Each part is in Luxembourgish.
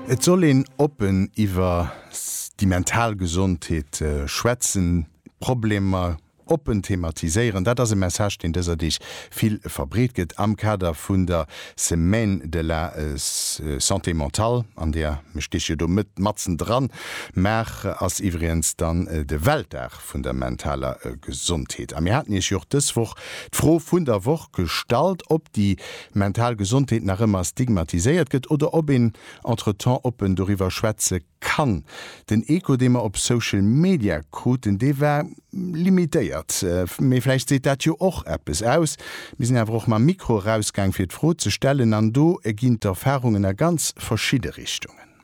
Et soll een oppen iwwer déi mental Gesondheet schwätzen, d'Problemer oppen thematiséieren. Dat ass e Message, deen dëser Deeg vill verbreet gëtt am Kader vun der Semaine de la Santé Mentale, an där, mir steche jo do matzen dran, Maart ass iwwregens dann de Weltdag vun der mentaler Gesondheet. A mir haten Iech jo och dës Woch d'Fro vun der Woch gestallt, ob déi mental Gesondheet nach ëmmer stigmatiséiert gëtt oder ob een entretemps oppen doriwwer schwätze kann. Den Echo, dee mer op Social Media kruten, dee war limitéiert. Mee vläicht seet dat jo och eppes aus. Mir sinn awer och mam Mikro erausgaang, fir d'Fro ze stellen, an do ginn d'Erfarungen a ganz verschidde Richtungen.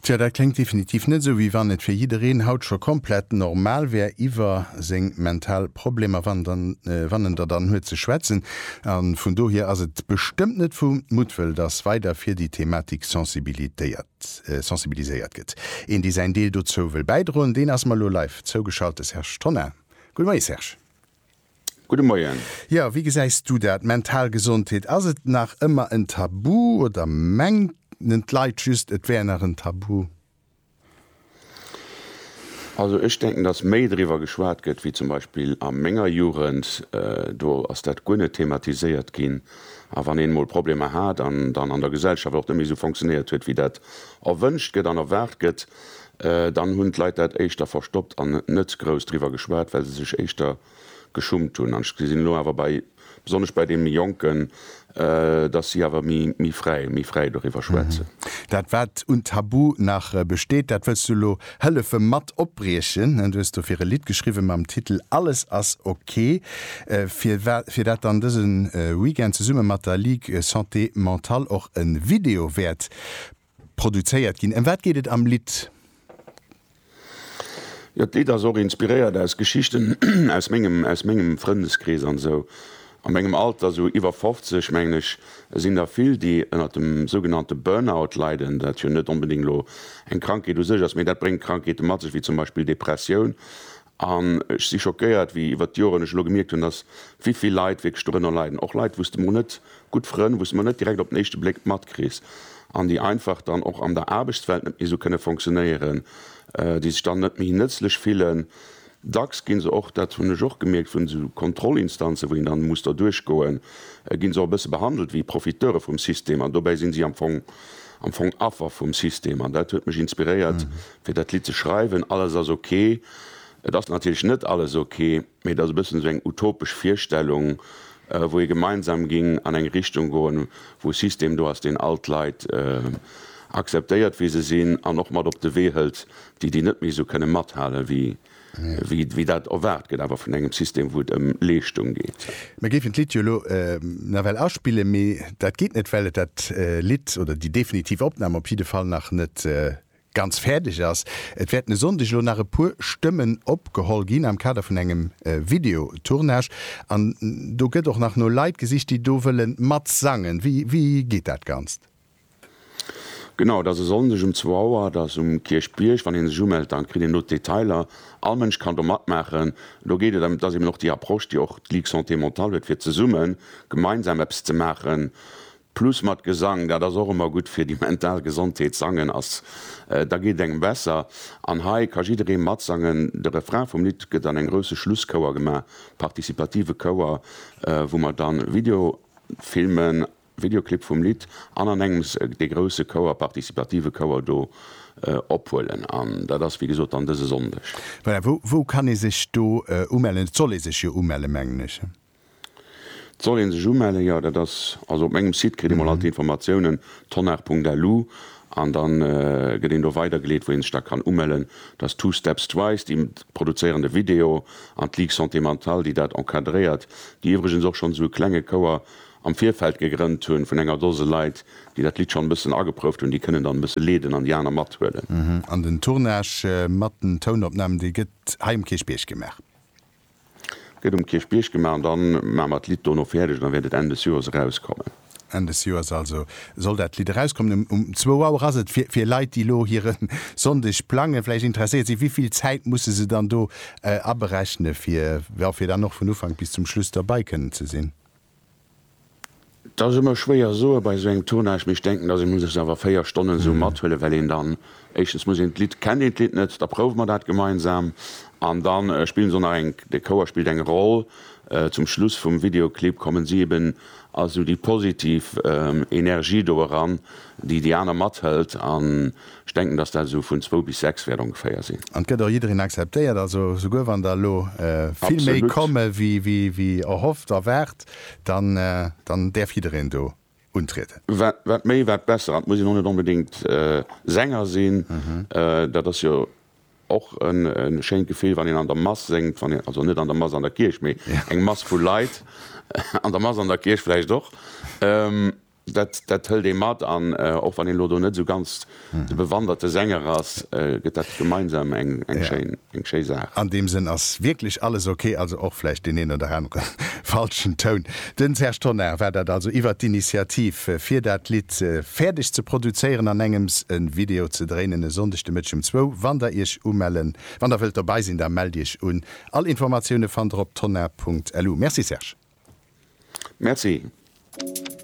Tja, dat kléngt definitiv net esou, wéi wann et fir jiddereen haut scho komplett normal wär, iwwer seng mental Problemer, wann dann, wann en der dann huet, ze schwätzen. A vun dohier ass et bestëmmt net vu Muttwëll, dass weider fir déi Thematik sensibilitéiert, sensibiliséiert gëtt. Een, dee säin Deel dozou wëll bäidroen, deen ass mer elo live zougeschalt, de Serge Tonnar. Gudde Moie Serge. Gudde Moien. Jo, wéi gesäis du dat? Mental Gesondheet, ass et nach ëmmer en Tabu oder mengen d'Leit just et wär nach en Tabu? Also ech denken, datt méi driwwer geschwat gëtt wéi zum Beispill a menger Jugend. Do ass dat guer net thematiséiert ginn. A wann een emol Problemer hat an dann an der Gesellschaft och net méi esou fonctionnéiert huet wéi dat erwënscht gëtt an erwaart gëtt, Dann hunn d'Leit dat éischter verstoppt an net grouss driwwer geschwat, well se sech éischter geschummt hunn. An ech gesinn elo awer bei, besonnesch bei deene Jonken, dass si awer méi fräi, méi fräi doriwwer schwätzen. Dat wat un Tabu nach besteet, dat wëlls du elo hëllefe mat opbriechen. Du hues dofir e Lidd geschriwwe mam Titel Alles ass ok. Fir dat dann dëse Weekend zesumme mat der Ligue Santé Mentale och e Video wäert Produzéiert ginn. Ëm wat geet et am Lidd? Jo, d'Lidd ass och inspiréiert aus Geschichten aus mengem, aus mengem Frëndeskrees an esou. A mengem Alter, esou iwwer 50, mengen ech, sinn der vill, déi ënnert dem sougenannte Burnout leiden, dat jo net onbedéngt elo eng Krankheet u sech ass, mee dat bréngt Krankheete mat sech, wéi zum Beispill Depressioun. An ech si schockéiert, wéi iwwert d'Joren ech elo gemierkt hunn, dass wéivill Leit wierklech dorënner leiden, och Leit, wou s de mol net, gutt Frënn, wou s de mol net direkt op den éischte Bléck matkriss an déi einfach dann och an der Aarbechtswelt net méi esou kënne fonctionnéieren, déi sech dann net méi nëtzlech fillen. Dacks gi se och, dat hunn ech och gemierkt, vun esou Kontrollinstanzen, wou een dann muss derduerch goen, gi se och e bësse behandelt wéi Profiteure vum System. An dobäi si si am Fong, am Fong Affer vum System. An dat huet mech inspiréiert, fir dat Lidd ze schreiwen, Alles ass ok. Et ass natierlech net alles ok, mee et ass e bëssen esou eng utopesch Virstellung, wou ee gemeinsam géing an eng Richtung goen, wou e System do ass, deen all d'Leit akzeptéiert, wéi se sinn, an och mat op de Wee hëlt, déi, déi net méi esou kënne mathalen, wéi dat erwaart gëtt awer vun engem System, wou et ëm Leeschtung geet. Mir géifen d'Lidd jo elo nawell aspillen, mee dat geet net, well et dat Lidd oder déi definitiv Opnam op jidde Fall nach net ganz fäerdeg ass. Et wäerten e Sonndeg elo nach e puer Stëmmen opgeholl ginn am Kader vun engem Videotournage an do gëtt och nach no Leit gesicht, déi do wëlle matsangen. Wéi geet dat Ganzt? Genau, et ass e Sonndeg um zwou Auer, et ass um Kierchbierg. Wann ee sech umellt, da kritt een do d'Detailer. All Mënsch kann do matmaachen. Elo geet et ëm, et ass eben och déi Approche, déi och d'Ligue Santé Mentale huet, fir zesummen, gemeinsam eppes ze maachen. Plus mat Gesang, dat ass och ëmmer gutt fir déi mental Gesondheet, sangen ass, da geet et engem besser. An hei ka jidderee matsangen, de Refrain vum Lidd gëtt an engem grousse Schlusschouer gemaach, participative Chouer, wou mer dann Video filmen, Videoclip vum Lidd, an an engems dee grousse Chouer, participative Chouer do ophuelen. An dat ass wéi gesot dann dëse Sonndeg. Voilà, wou kann ee sech do umellen? Et soll ee sech jo umelle mengen ech. Et soll een sech umellen, jo dat ass, also op mengem Site kritt ee mol all d'Informatiounen, tonnar.lu, an da gëtt een do weidergeleet wou ee sech da kann umellen. Et ass Two Steps Twice déi produzéieren de Video an d'Ligue Santé Mentale déi dat encadréiert, déi iwwregens och schonn esou e klenge Chouer am Virfeld gegrënnt hunn vun enger Dose Leit déi dat Lidd schonn e bëssen ageprouft hunn, déi kënnen dann e bësse leeden an déi aner mathuelen. An den Tournage mat den Tounopnamen dee gëtt hei um Kierchbierg gemaach? Gëtt um Kierchbierg gemaach an dann maache mer d'Lidd dono fäerdeg an da wäert et Enn des Joers erauskommen. Enn des Joers also soll dat Lidd erauskommen. Um zwou Auer ass et. Fir Leit, déi elo hire Sonndeg plangen, vläicht interesséiert si, wivill Zäit musse se dann do aberechnen, fir dann och vun Ufank bis zum Schluss derbei kënnen ze sinn? 't ass ëmmer schwéier soe bei esou engem Tournage, mee ech denken, dass ee muss sech awer 4 Stonnen esou mathuelen, well een dann éischtens muss een d'Lidd, kennt een d'Lidd net, da prouwe mer dat gemeinsam an da spillen se och nach eng, de Chouer spillt eng Roll. Zum Schluss vum Videoclip kommen si eben als esou déi positiv Energie do eran, déi déi aner mathëlt an ech denken, dass dat esou vun zwou bis sechs wäert ongeféier sinn. An et gëtt och jiddereen akzeptéiert, also souguer wann der elo vill méi komme wéi erhofft, erwaart, dann däerf jiddereen do untrieden. Wat méi, wat besser. An et muss een och net onbedéngt Sänger sinn, dat ass jo och e schéint Gefill, wann een an der Mass séngt, also net an der Mass an der Kierch, mee eng Mass vu Leit, an der Mass an der Kierch vläicht och. Dat dat hëlt ee mat an och wann een elo do net esou ganz de bewanderte Sänger ass, gëtt dat gemeinsam eng eng schéin eng schéi Saach. An deem Sënn ass wierklech alles ok, also och vläicht deen een oder anere falschen Toun. Den Serge Tonnar war dat also iwwert d'Initiativ fir dat Lidd fäerdeg ze produzéieren an engems e Video ze dréinen. E Sonndeg de Mëtteg um zwou wann der iech umellen. Wann der wëllt dobei sinn, da mellt iech un. All Informatioune fannt der op tonnar.lu. Merci Serge. Merci.